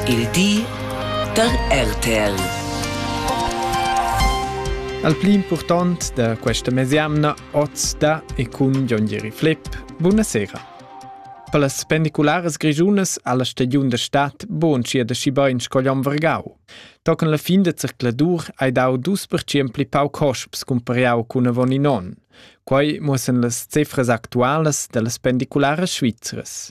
Il di da RTL. Al pli impurtant da questa mesiamna oz da e cun Jon Jeri Flepp. Buonasera. Per las pendicularas grischunas ha la stagiun da stat buonschia da schi bain sco Jon Vergau. Tocan la fin da zercladur hai dau dus percient pli pau cosps cumpariau cun avon in on. Quai muossan las cifras actualas dallas pendicularas svizras.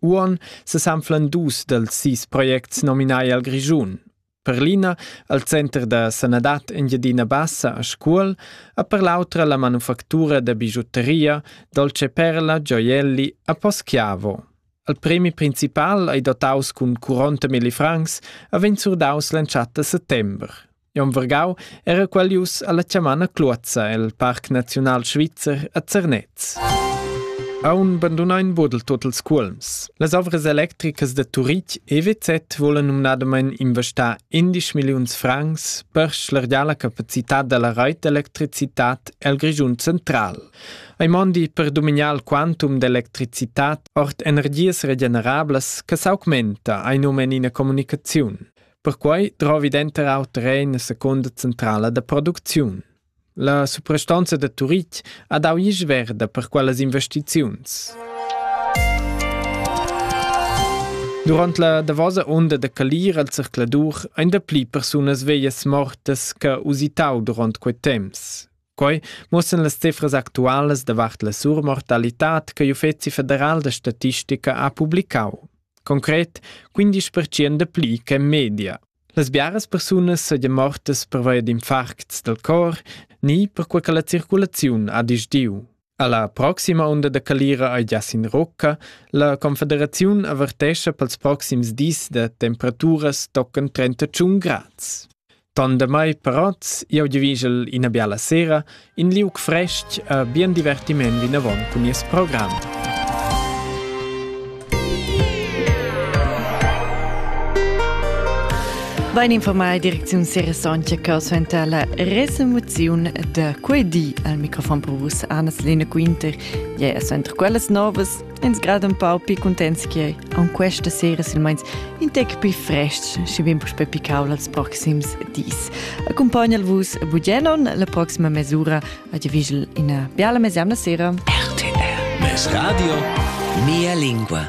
Uon sesanflan dus dels sis projects nominai al Grischun. Per l'ina al Center da sanadad Engiadina Bassa a Scuol e per l'autra la manufactura da bigiutteria Dolce Perla Gioielli a Poschiavo. Al premi principal ei dotaus cun 40 milli francs e vegn surdaus l'entschatta settember. Jon Vergau era qualius alla chamana Cluozza el Parc Naziunal Svizzer a Zernez. Aun bandunain bodel totals cuolms. Las ovras electricas da Turitg EWZ volan numnadamain investar 11 milliuns francs per schlargiar la capacitad da la rait d'electricitat el Grischun central. Ei mondi per dominar il quantum d'electricitat ord energias regenerablas che s'augmenta, ei nomen ina comunicaziun. Perquai drovi denter auter era ina secunda centrala da producziun. La suprastonza da Turitg ha dau isch verda per quellas investiziuns. Durant la davosa onda da calir al zercladur ein dapli persunas veglias mortas che usitau durant quei temps. Quei muossan las cifras actualas davart la surmortalitad che l'Uffeci federal da statistica ha publicau. Concret 15% de pli che in media. Las biaras persunas seigien mortas pervia d'infarcts del cor ni per quei che la circulaziun ha disdiu. Alla proxima unda da calira ei gias in Rocca. La Confederaziun avertescha pels proxims dis da temperaturas toccan 31 grads. Tandemai parats, iau divigel ina biala sera, in liuc fresc e bien divertiment vinavon cun nies program. Vain informai direcziun Seresantia che suenter la resemoziun da quei di al microfon per vus Anna-Selina Quinter, ja suenter quellas novas ins grad un pau pi contents che an questa sera silmeins in tec pi frestg și vin puspe picaul als proxims dis. Accompagnal vus Bugelon la proxima mesura Ed vigel ina biala mesemna sera. RTR Mes radio Mia lingua